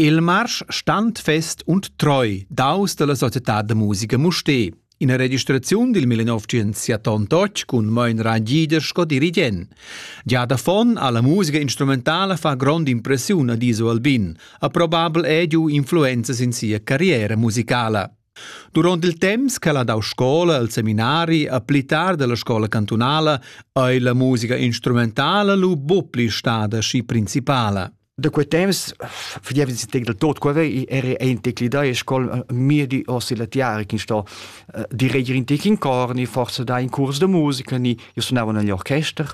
Il marsch standfest und treu daus dalla societad da musica Mustér. Ina registraziun dil 1978 cun Moin Rangida sco dirigent. Gia da fon alla musica instrumentala fa grond impressiun ad Iso Albin, ha probabel ediu influenzas in sia carriera musicala. Duront il temps ch'el ha dau scola al seminari a pli tard dalla scola cantunala ei la musica instrumentala lu buc pli stada schi principala. Da quei temps fagevi si tec del tot quava era ein teclidai e scol mia di ossi la tiara che sto di reger in tec in cor ni forse da in curs de musica ni io suonavo negli orchester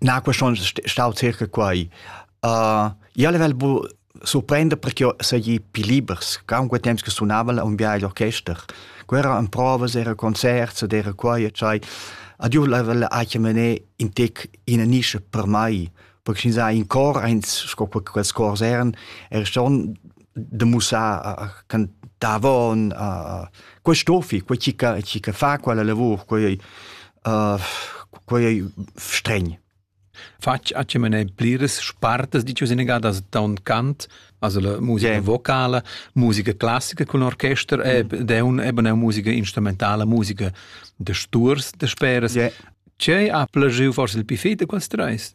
Na que schon stau circa quai. Uh, io level bu surprender perché seigi più libers. Comunque temps che sunava un viaggio orchester. Quera en provas, era concerts ed era quai e cai. Ad io level ha che mené in tec in nische per mai. Perché sin sai in cor, eins sco quels cors eran, er schon de mussar a cantavon a quest'ofi quei chi ca chi ca fa quella lavur quei uh, quei stregn Fatg a ce mene pliras spartas di ciò senegadas da un cant, also la musica yeah. vocala, musica classica con orchester e mm. de un eben musica instrumentala, musica de sturs de speras. Yeah. Ce ha plagiu forse il pifete quels treis?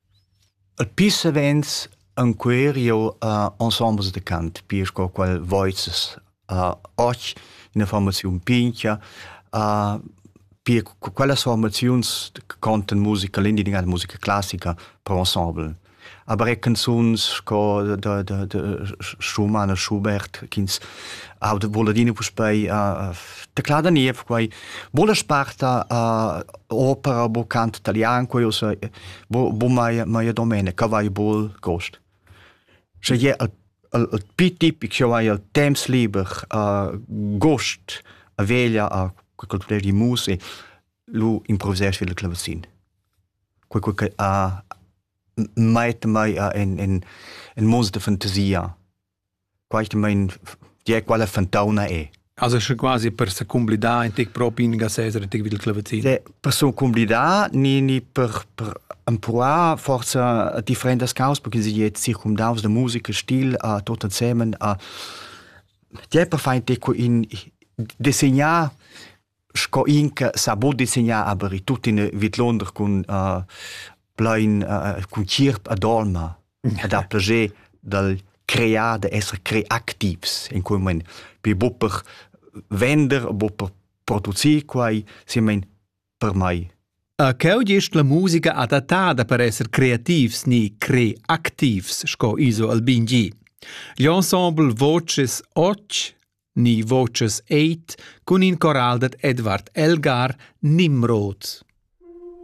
E pü savens ancuer jeu a ensembles da cant, pia sco quel voices. och üna formaziun pincha, pia quellas formaziuns contan musica, l'indigenada musica classica per ensemble. Aber er canzuns sco da da da Schumann e Schubert, ch'ins auda vull adina puspei da Cla Daniev, quai Bo la sparta uh, opera, bo cant italian, quello se, bo, bo mai, mai domenica, vai bol cost. Sche je al, al, al pitip, che vai al temps liber, uh, gost a veglia a quel di mus e lu improvvisesci il clavacin. Quel che ha mai mai in in in mons de fantasia Quaitmaing die quella fantauna è. Also sche quasi per se cumblidar in tic propi in gasesera tic vid il clavazin. Se, per so cumblidar ni ni per per empruar forza differentas cause perché sie jetzt circumdaus de musica stil a tot insemen a die per fein tic in desegnar sco in che sa bod disegnar aber tuttina vidlonder cun uh, plein uh, cun cirp a dolma ed ha plager dal crear da essere creativs in cui mein bi bupper vender bupper producir quai si mein per mai Uh, Cheu gest la musica adattada per esser creativs ni creativs, sco Iso Albin G. Gli ensemble Voces Och ni voces eit cun in coral dad Edvard Elgar Nimrod.